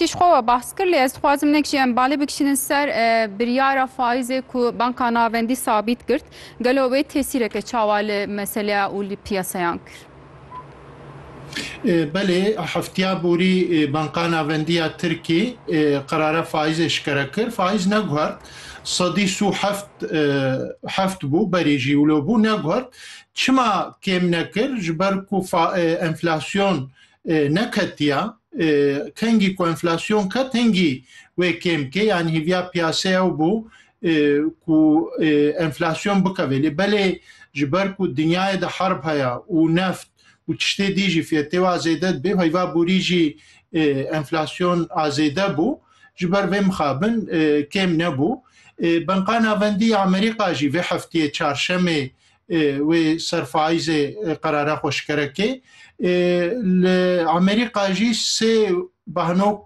Tî ji xwe we behs kir lê ez dixwazim hinek jî em balê bikişînin ser biryara faîzê ku Banka Navendî sabît girt. Gelo wê tesîreke çawa li meseleya û li piyasayan kir? Belê, hefteya borî Banka Navendî ya Tirkî qerara faîzê şikere kir. Faîz neguhert. Sedî sû heft heft bû berî jî wilo bû neguhert. Çima kêm nekir? Ji ber ku enflasyon neketiya kengî ku enflasyon ket hingî wê kêm ke yan hîviya piyase ew bû ku enflasyon bikevê lê belê ji ber ku dinyayê de herb heye û neft û tiştê dî jî fiyetê wa zêde dibê heyva borî jî enflasyon azêde bû ji ber vê mixabin kêm nebû. Banka Navendî ya Amerîka jî vê heftiyê çarşemê Wê serfayîzê qerara xwe şikere kê. Li Amerîka jî sê behnok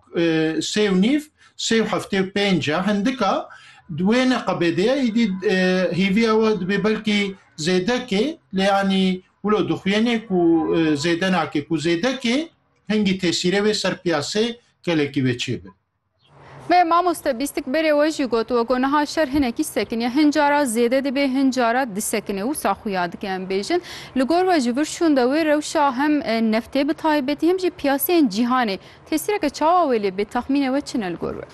sê û nîv sê û heftê û pênc e hindika di wê neqebêdê ye îdî hêvî ew e dibê belkî zêde kê lê yanî wilo dixuyênê ku zêde nake ku zêde kê hingî tesîrê wê ser piyasê gelekî wê çêbe. Me mamoste bîstik berê we jî gotiwe ku niha şer hinekî sekiniye. Hin cara zêde dibê, hin cara disekinê. Wisa xuya dike em bêjin. Li gor we ji vir şûn de wê rewşa hem neftê bi taybetî hem jî piyaseyên cîhanê tesîreke çawa wê lê bê? Texmînê we çi ne li gor we?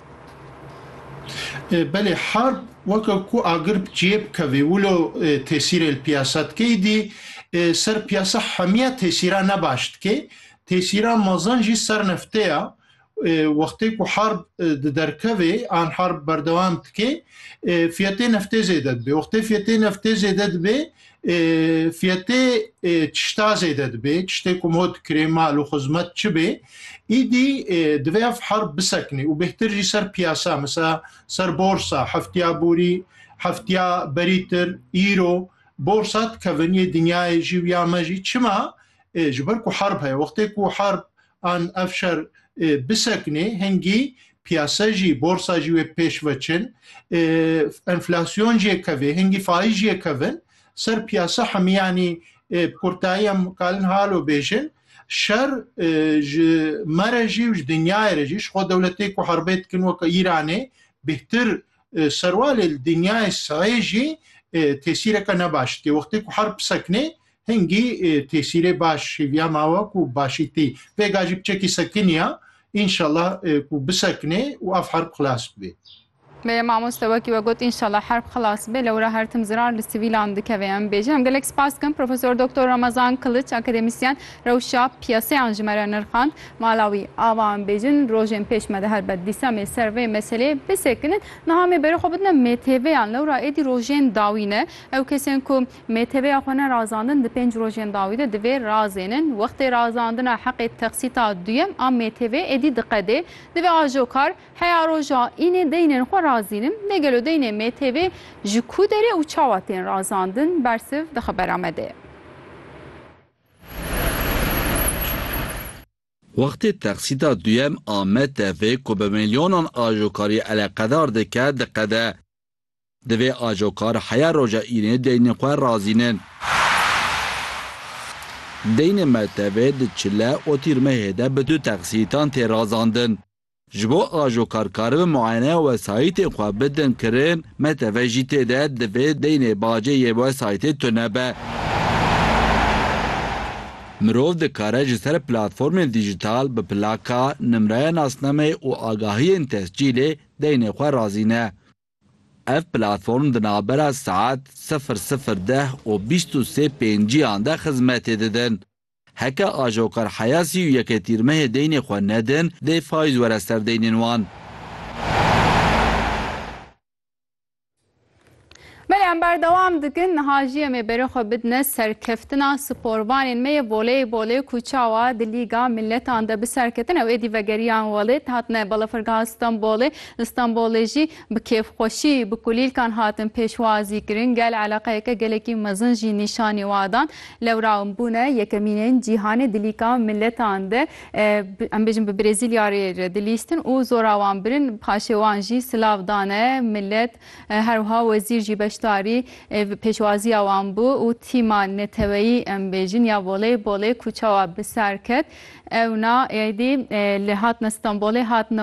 Belê harb weke ku agir bi cihê bikevê wilo tesîrê li piyasa dike îdî ser piyasa hemiya tesîra ne baş dike. Tesîra mezin jî ser neftê ya Wextê ku harb di derkevê an harb berdewam dikê fiyetê neftê zêde dibê. Wextê fiyetê neftê zêde dibê fiyetê çişta zêde dibê. Çiştê ku hot kirê mal û xizmet çi bê îdî divê ev harb bisekinê û bêhtir jî ser piyasa mesela ser borsa heftiya borî heftiya berîtir îro borsa dikevin yê dinyayê jî û ya me jî çima ji ber ku harb heye wextê ku harb an ev şer bisekinê hingî piyase jî borsa jî wê pêş veçin enflasyon jê kevê hingî faiz jê kevin ser piyasa hemiyanî kurtayî em kalin halo bêjin şer ji me re jî û ji dinyayê re jî ji xwe dewletê ku herbê dikin weke Îranê bêhtir Serwalê li dinyayê sahê jî tesîreke ne baş tê. Wextê ku herb bisekinê hingî tesîrê baş hêviya ma we ku başî tê. Pêga jî piçekî sekiniya înşallah ku bisekinê û ev herb xilas bibê. Beye mamoste wekî we got înşallah herb xilas bibê lewra her tim zirar li sivîlan dikeve. Em bêje em gelek spas dikim Profesor Doktor Ramazan Kiliç akademisyen Rewşa piyaseyan ji me re nirxand. Mala wî, ava em bêjin, rojên pêş me diher be, dîsa em ê ser vê meseleyê bisekinin. Niha em ê berê xwe bidine MTV'yan. Lewra êdî rojên dawî ne. Ew kesên ku MTV'ya xwe nerazandin di pênc rojên dawî de divê razênin. Wextê razandina heqê texsîta duyem a MTV'ê êdî diqedê. Divê ajokar heya roja înê deynên xwe razînin. Lê gelo deynê MTV'ê ji ku derê û çawa tên razandin? Bersiv di xebera me de ye. Wextê teqsîda duyem a MTV ku bi milyonan ajokarî eleqedar dike diqede. Divê ajokar heya roja înê deynê xwe razînin. Deynê MTV di çile û tîrmehê de bi du teqsîtan tê razandin. Ji bo ajokar karibin muayeneya wesayîtên xwe bidin kirin, me teve jî tê de divê deynê bajê yê wesayîtê tune be. Mirov dikare ji ser platformên dîjital bi plaka, nimreya nasnameyê û agahiyên tescîlê deynê xwe razîne. Ev platform di navbera saet sifir sifir deh û bîst û sê pênciyan de xizmetê didin. Heke Ajoqer Heyasî û Yeke Tîrmehê deynê xwe nedin, dê fayîz were ser deynên wan. Belê em berdewam dikin niha jî em ê berê xwe bidine serkeftina sporvanên me yê voleybolê ku çawa di Lîga Miletan de bi serketin ew êdî vegeriyan welêt hatine balafirgeha Stenbolê li Stenbolê jî Bi kêfxweşî bi kulîlkan hatin pêşwazîkirin, gel eleqeyeke gelekî mezin jî nîşanî wa dan. Lewra em bûne yekemînên cîhanê di lîka miletan de, em bêjin bi Brezîlya rê re dilîstin û zora wan birin, paşê wan jî silav dane milet. Her wiha wezîr jî beşdarî pêşwaziya wan bû û tîma neteweyî em bêjin ya voleybolê ku çawa bi ser ket, ewna êdî li hatine Stenbolê hatine